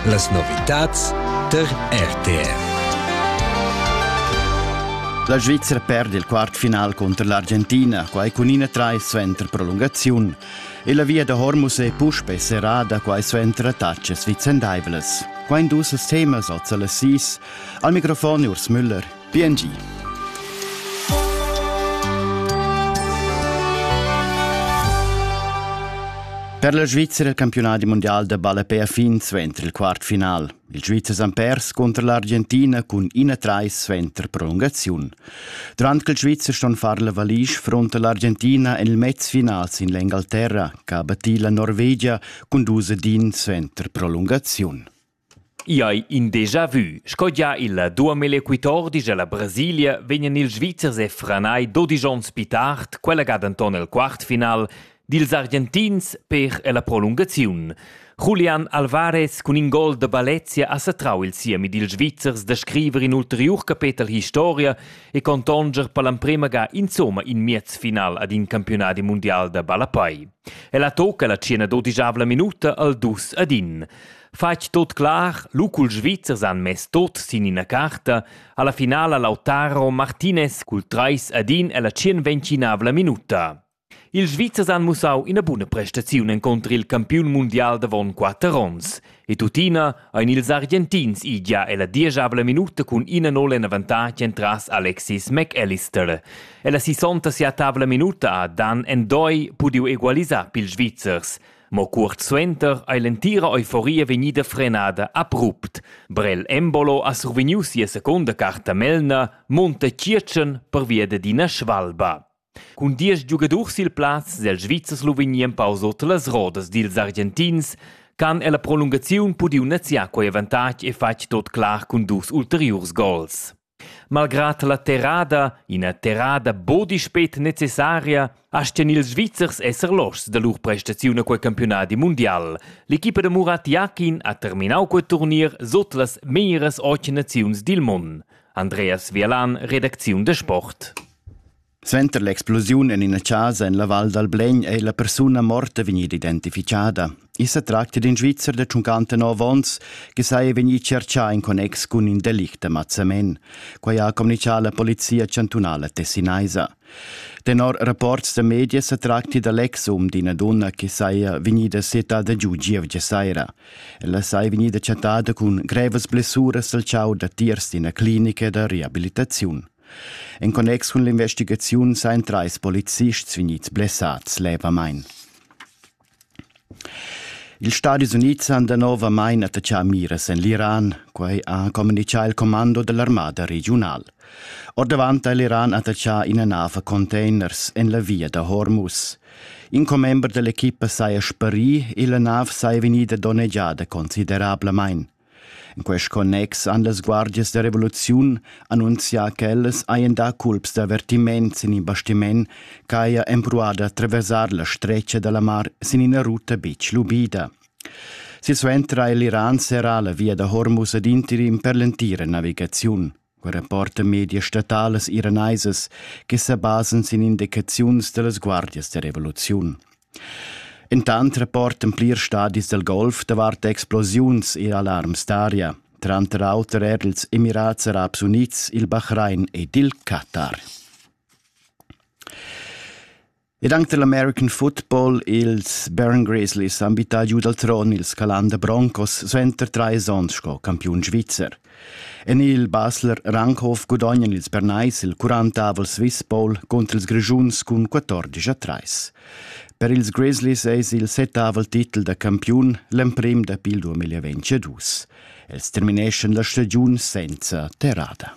Las novitads tar RTR. La Svizzera perd il quartfinal contro l'Argentina, quai cun ina trai suenter prolungaziun, e la via da Hormuz è puspè serrada quai suenter attacas vicendaivlas. Quai in dus temas oz alle sis. Al microfon Urs Müller. BNG Per la Svizra il campiunadi mondial da ballapè ha fin suenter il quartfinal. Il Svizzer han pers contro l'Argentina cun 1-3 suenter prolungaziun. Durant che il Svizzer ston far la valisch fronta l'Argentina en il mezfinal sin l'Engalterra, che ha battì la Norvegia cun dus din suenter prolungaziun. I hai in déjà vü. Sco gia il duamil equitordi cha la Brasilia vegnan ils Svizzers e franai dodisch ons pli tard, quella ga denton el quartfinal, dils Argentins per la prolungaziun. Julian Alvarez cun in gol da Balezia ha satrau il siemi dils Svizzers da scriver in ulteriur capetel historia e contonger per l'emprema ga insomma in miez final ad in campionadi mundial da ballapai. El ha tocca la cena dodischavla minuta al dus ad in. Fatg tot clar, lu cul Svizzers han mess tot sin ina carta, alla finala Lautaro Martinez cul trais ad in ella tschienventinavla minuta. Ils Svizzers han mussau ina buna prestaziun encontr il campiun mundial davon quatter onns. E tuttina ein ils Argentins igia ella dieschavla minuta cun ina nol en avantatg entras Alexis McAllister. Ella sisonta sia tavla minuta ha Dan Endoi pudiu egualisar pils Svizzers. Mo cuort suenter ei l'entira euforia vegnida frenada abrupt. Brel Embolo ha survegniu sia secunda carta melna Monte Tschiertschen pervia d'ina svalba. Cun diesch giugadurs sil plaz sil Svizzers lu vegni empau sut las rodas dils Argentins han ella prolungaziun pudiu neziar quei avantatg e fatg tot clar cun dus ulteriurs gols. Malgrad la terrada, ina terrada buc dispet necessaria, astgan ils Svizzers esser loschs da lur prestaziun a quei campiunadi mundial. L'equipa da Murat Yakin ha terminau quei turnir sut las meglieras ochi naziuns dil mund. Andreas Vielan, redacziun da sport. Suenter l'explosiun en ina chasa en la Val dal Blegn è la persuna morta vegnida identificada. I sa tracta d'in Svizzer da 59 onns che saja vegnì tschertgà in connex cun in delict da mazzamen. Quai ha communitgà la polizia chantunala tessinaisa. Tenor rapports da media sa tracti da l'ex um d'ina donna che saja vegnida settada giu gievgia saira. Ella saja vegnida chattada cun grevas blessuras al chau da tiers d'ina clinica da reabilitaziun. En connex cun l'investigaziun sain trais polizists vegnids blessads levamain. Ils Stadis Unids han danovamain attaccà miras en l'Iran, quai ha communitgà il commando dell'armada regiunal. Ordavant ha l'Iran attaccà ina nav a containers en la via da Hormuz. In commember dell'equipa saja sparì e la nav saja vegnida donnegiada considerablamain. In quest connex han las guardias da revoluziun annunzià ch'ellas hajan dà culps d'avertiment sin in bastiment ch'haja empruada da traversar la stretga da la mar sin ina ruta betg lubida. Silsuenter ha l'Iran serrà la via da Hormuz ad interim per l'entira navigaziun. Quei rapporta medias statalas iranaisas che sa basan sin indicaziuns dallas guardias da revoluziun. Intant rapportan plirs stadis dal Golf davart explosiuns e alarms d'aria, tranter auter er ils Emirats Arabs Unids, il Bahrain ed il Katar. Ed anc dal American football ils Baron Grizzlies han bittà giu dal tron ils Calanda Broncos suenter trais onns sco campiun svizzer. En il Basler Ranghof gudognan ils Bernais il quarantavel Swiss Bowl contro ils Grischuns cun 14 a 3. Per ils Grizzlies eis il settavel titel da campiun l'emprim dapi il 2022. Els termineschan la stagiun senza terrada.